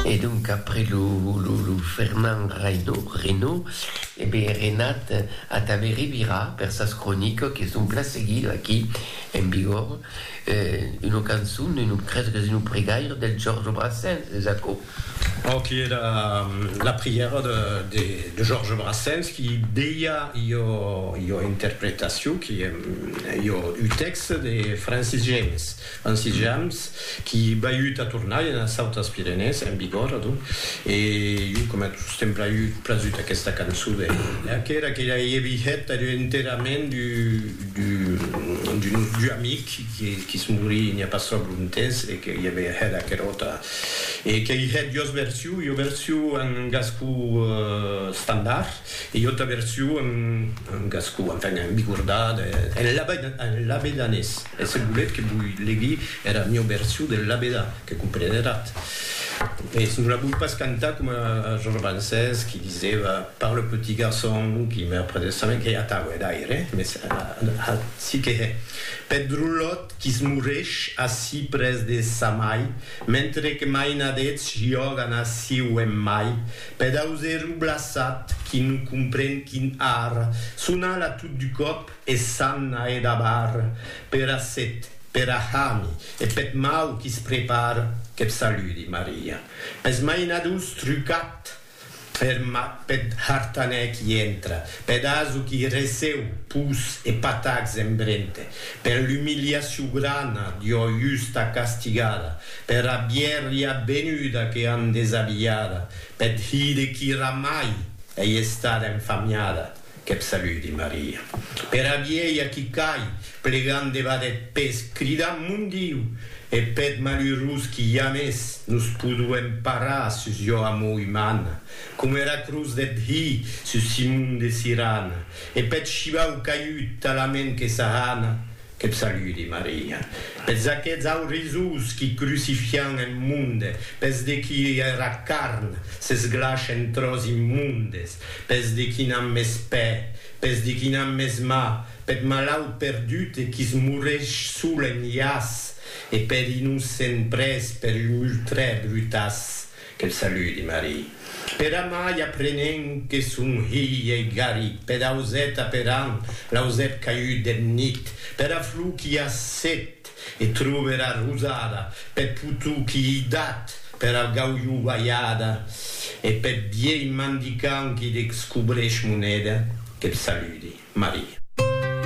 E donc après lo Fernand Reynaud, e be Renat a ta ve revirar per sas cronicas que son plan seguido aquí en Bigorre, una cançon, crese qu'es una pregaire del Georges Brassens, es aquò? Aqui e la prièra de Georges Brassens qui deia ua interpretacion qui ua texte de Francis James. En sitjams qui baiut a tornar ena Sautas Pirenèes, en vigor, adonc, e jo coma tos t'èm braiut prasut aquesta cançó de que era que ei vihet enterament du amic qui es morí n'i a pas tròp lontès e que i ave hèt aqueròta e qu'ei hèt jos version, jo version en gascó standard e jo ta version en gascó, enfin, en bigordà, en labedanés. E se volet que voi legui era mieu version del labedà, que comprenerat. Mès non la voi pas cantar coma Georges Brancès qui diseva par le petit garçon qui meurt près de sa main, qu'ei atau, hè, d'aire, mès ací que hè, peth drolot qui se moresh ací près de sa mai, mentre que mainadets jògan ací o en mai, peth auserro blaçat qui non compren quin ar, son ala tot du còp, E s'an a edabar pera set, pera hami e peth mau qui's prepar, qu'eth saludi, Maria. Pes mainadors trucat er mat peth hartanèr qui entra, peth aso qui receu pus e patacs en brente, per l'umiliacion grana d'ua justa castigada, pera bièrria benuda que an desabilhada, peth hide qui ramai ei estada enfamiada, Qu'eb saludi, Maria. Pera vielha qui cai, plegant debat eth pes, cridant, Mon Diu! E peth malurós qui jamès nos poduem parar sus jo amor umana, coma era cruz deth Hi sus Simon de Sirana, e peth shivau caiut talament que s'ahana Que't saludi, Maria, pes d'aqueths aurizous qui crucifian en monde, pes de qui era carn s'esglash en tròç immondes, pes de qui n'an mes pè, pes de qui n'an mes mà, peth malaut perdut e qui's moresh sol en jaç, e per innocent pres per un ultrè brutaç. Que'l saludi, Marie. Per amai aprenent que son hilh ei Gary, pedausèt aperant l'ausèp caiut deth nit, pera flor qui a set, e trove era rosada, peth potou qui ei dat, pera gaulhou balhada e peth vielh mandicant qui descobreix moneda. Que'l saludi, Marie.